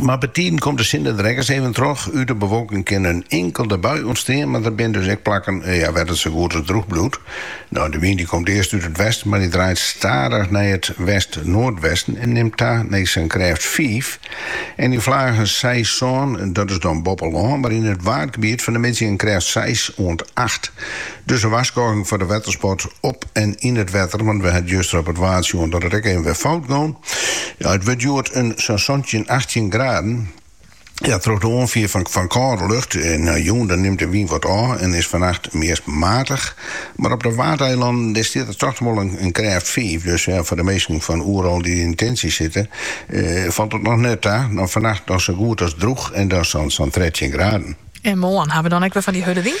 Mar betiden komt de sinde der ek ris even troch. Ut de bewolking kin in inkelde bui ûntstean, mar der binne dus ek plakken wêr't it sa goed as drûch bliuwt. De wyn dy komt earst út it westen, mar dy draait stadich nei it west-noardwesten en nimt ta nei sa'n krêft fiif en yn flagen seis, sân. Dat is dan boppe lân, mar yn it waadgebiet fannemiddei in krêft seis oant acht. Dus in warskôging foar de wettersport op en yn it wetter, want we ha juster op it Waad sjoen dat it ek even wer fout gong. Ja, it wurd hjoed in sa'n santjin, achttjin graden. Ja, troch de oanfier fan fan kâlde lucht. Jûn, dan nimt de wyn wat ôf en is fannacht meast matig. Mar op de Waadeilannen, dêr stiet der toch wol in krêft fiif. Dus ja, foar de minsken fan Oerol dy't yn in tintsje sitte, falt it noch net ta. Dan fannacht noch sa goed as drûch en dan sa'n sa'n trettjin graden. En moarn, ha we dan ek wer fan dy hurde wyn?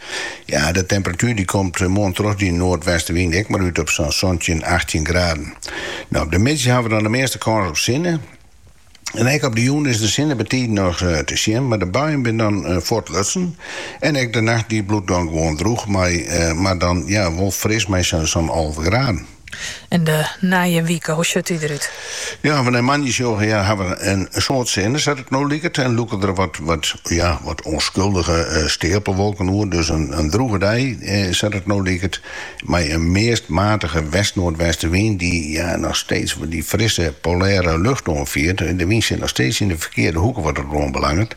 Ja, de temperatuer dy komt moarn troch dy noardwestenwyn ek mar út op sa'n santjin, achttjin graden. No, op de middei hawwe we dan de measte kâns op sinne. En ek op de jûn is de sinne betiden noch te sjen, mar de buien binne dan fuortlutsen. En ek de nacht dy bliuwt dan gewoan drûch mei, mar dan ja, wol fris mei sa'n alve graden. En de nije wike, hoe sjocht dy derút? Ja, at we nei moandei sjogge ja, hawwe we in soad sinne, sa't it no liket, en lûke der wat, wat, ja, wat ûnskuldige steapelwolken oer. Dus in drûge dei, sa't it no liket, mei in meast matige west-noardwestewyn, dy't ja, noch steeds dy frisse polêre lucht oanfiert. De wyn sit noch steeds yn de ferkearde hoeke wat dat oanbelanget.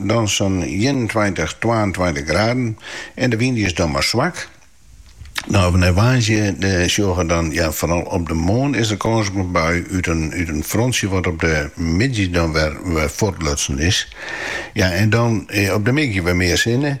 dan sa'n ienentweintich, twaentweintich graden en de wyn is dan mar swak. No, at we nei woansdei sjogge dan, ja foaral op de moarn is der kâns op in bui út in frontsje wat op de middei dan wer fuortlutsen is. Ja en dan op de middei wer mear sinne.